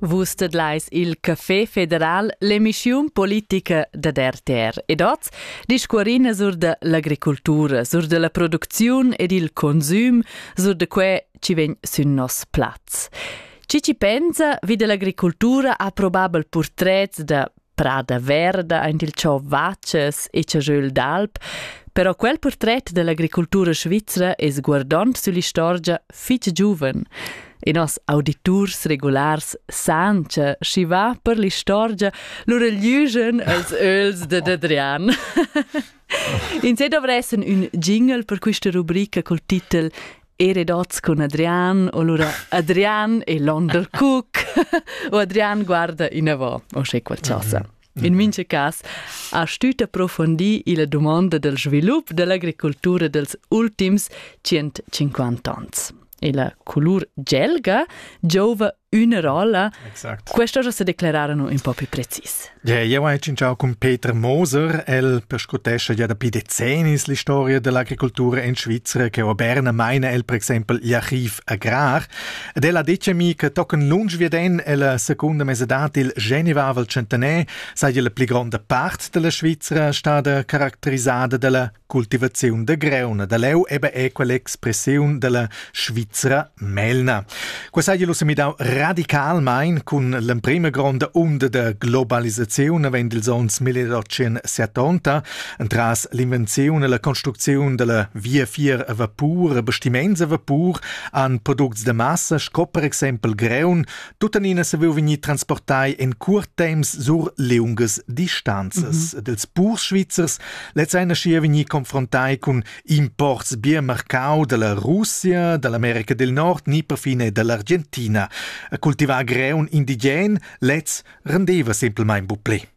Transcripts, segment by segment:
Vus tedlais il Café federal, l'emissiun politica dad RTR. Ed oz discuorina sur da l'agricultura, sur da la producziun ed il consum, sur da quai chi vegn sün nos plaz. Chi chi pensa vi da l'agricultura ha probabel purtrets da Prada verda aint il cho Vaces e Chajöl d'Alp, però quel portret dell'agricultura svizra es guardond süll'istorgia fich giuven e nos auditurs regulars san cha schi va per l'istorgia lur lügen als öls de Adrian. In se dovressen ün jingle per quista rubrica col titel e redots cun Adrian, o lura Adrian e Londer Cook, o Adrian guarda inavò, o sche qualcosa. In mincha cas ha stüt approfondi illa dumonda del svilup dell'agricoltura dels ultims 150 ans. E la colur gelga giouva üna rolla, exact. questo già se declararano un po' più precis. Yeah, eu hai cinciau cun Peter Moser, el perscrutescha ja dapi decennis l'historia dell'agricoltura in Svizzera, che a Berna meina el per exempel l'archiv agrar, ed el ha detto mi che tocken lunsch wie den la seconda mesedad il Genevavel centenaire sei la pli gronda part della Svizzera stada caratterizzata dalla Cultivaziun da greuna da leu ebbe equa l'expressiun dalla Svizra Melna. Quei sai lu semidau radicalmein cun l'emprema gronda onda da globalisaziun avend ils onns 1870 entras l'invenziun e la construcziun dalla via fier a vapur e bastiments a vapur an products da massa sco per exempel greun Tuttenina savevo vegnir transportai en curt temps sur liungas distanzas mm -hmm. dels purs svizzers, lez ein aschia vegnir confrontai cun imports bien marcau dalla Russia, dall'America del Nord, ni perfine dall'Argentina. A cultivar greun indigen, lez rendeva semplmain bu pli.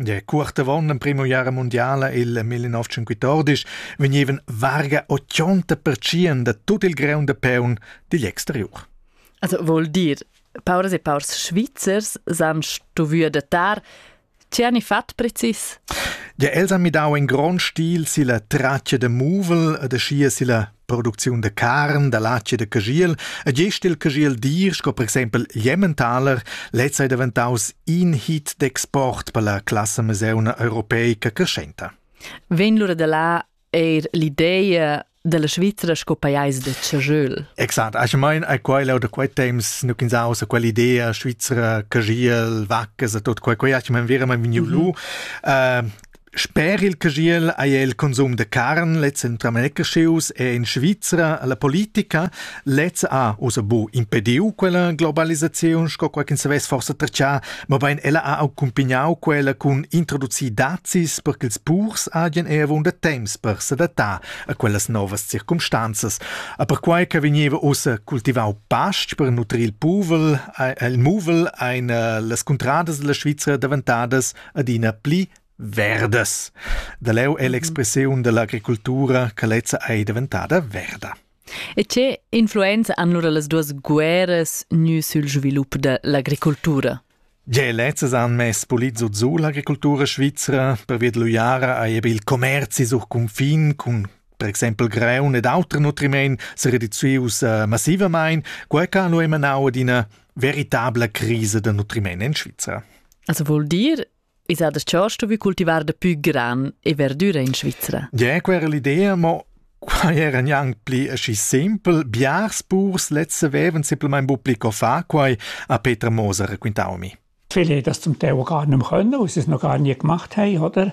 Der Kurt gewonnen am primo Jahr mondiale il 1914 vegnevan varga 80% da tut il graun da peun digl exteriur. Also vuol dir, pauras e paurs Svizzers s'han stuvü adattar. Che hanno fatto precis? Ja, els han midau in grond stil silla traccia de muvel e da scia silla producziun da carn, da latg e da cagiel, e gest il cagiel dir, sco per exempel l'Jemmentaler, lez ei daventaus in hit d'export per la classe meseuna europeica crescenta. Vegn lura da là eir l'ideia della Svizzera sco pajais de Chajöl. Exakt, ich meine, a quella oder quei temps nu ins aus a quell'idea Svizzera, Cagiel, Vaccas e tot quei quei, ich meine, veramente vegnu lu. Mhm. Uh, Sper il caschiel ei el consum da carn lez entramegaschius e en Svizra la politica lez ha ussa bu impediu quella globalisaziun sco quei ch'ins savess forsa tratgar, mobein ella ha accumpignau quella cun introducir dazis per ch'ils purs hagien avunda temps per s'adattar a quellas novas circumstanzas. A perquai che vegneva ussa cultivau pastg per nutrir il puvel, ha il muvel ein eh, las cuntradas dalla Svizra daventadas adina pli verdas. Da leu è l'expressiun dell'agricoltura che lezza ei diventada verda. E che influenza han lura las duas guerras gnü sül svilup da l'agricoltura? Ge lezzas han mess polit zut su l'agricoltura svizzera, pervia d'luiara hai ebe il commerzi sur confin cun per exempel greun ed auter nutriment se reducius uh, massivamain, quai ca lo emanau ad ina veritabla crisa da nutriment in Svizzera. Also vuol dir, is ha das Chorsto vi cultivar de più gran e verdura in Svizzera? Ja, quella l'idea, ma Qua era neanche pli aschi simpel. Biars letzte veven simpelmente bu pli co fa quai, a Peter Moser racquintau mi. Viele das zum Teil gar nicht mehr können, weil sie es noch gar nie gemacht haben, oder?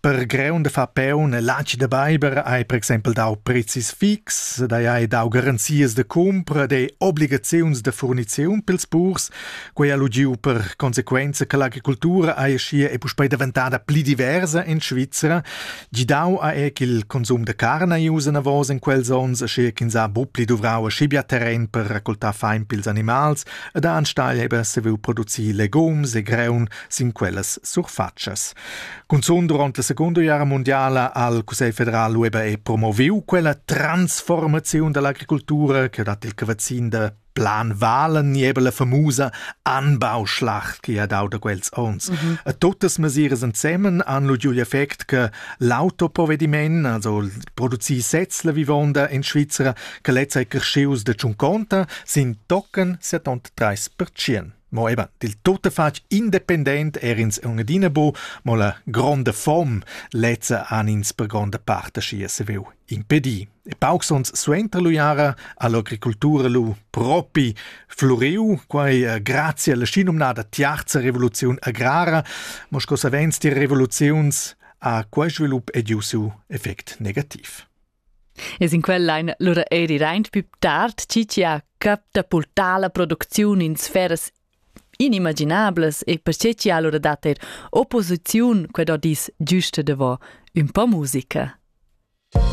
Per greun da far peun e latg da beiber hai per exempel dau prezis fix, dai hai dau garanzias da cumpra e obligaziuns da furniziun pils purs. Quei ha lu giu per consequenza che l'agricultura ei aschia e puspei daventada pli diversa en Svizra. Gidau ha è ch'il consum da carn ei ussa navos en quels onns, aschia ch'ins ha buc pli duvrau aschi bia terren per raccoltar fein pils animals ed ha enstagl haver saviu producir legums e greun sin quellas surfatschas. Cunzun durant la secunda guerra mondiala ha il Cussegl federal Weber e promoviu quella transformaziun dall'agricoltura che dat il cavazzin da Plan Valen niebel la famusa Anbauschlacht che ha dau da quels ons. Mm -hmm. A tuttas mesiras ensemen han lu giu effect che l'autoprovediment, also producir sez la vivonda in Svizzera, che lezza è crescius da tschunconta, sin tocken 73%. Mo eben dil tuttafatg independent er'ins aunc adina bu, mo la gronda fom lezza han ins per gronda part aschia saviu impedir. E paucs onns suenter l'uiara ha l'agricultura lu propi fluriu, quai eh, grazie alla schinomnada tiarza revoluziun agrara, mo sco savens die Revoluziuns ha quei svilup ediu siu effect negativ. E sin quel ein lura eri reint più tard chi chi ha cap da purtar la producziun in sferas inimaginablas e perche chi ha lura dat er opposiziun qued ho dis giusta davò ün po musica.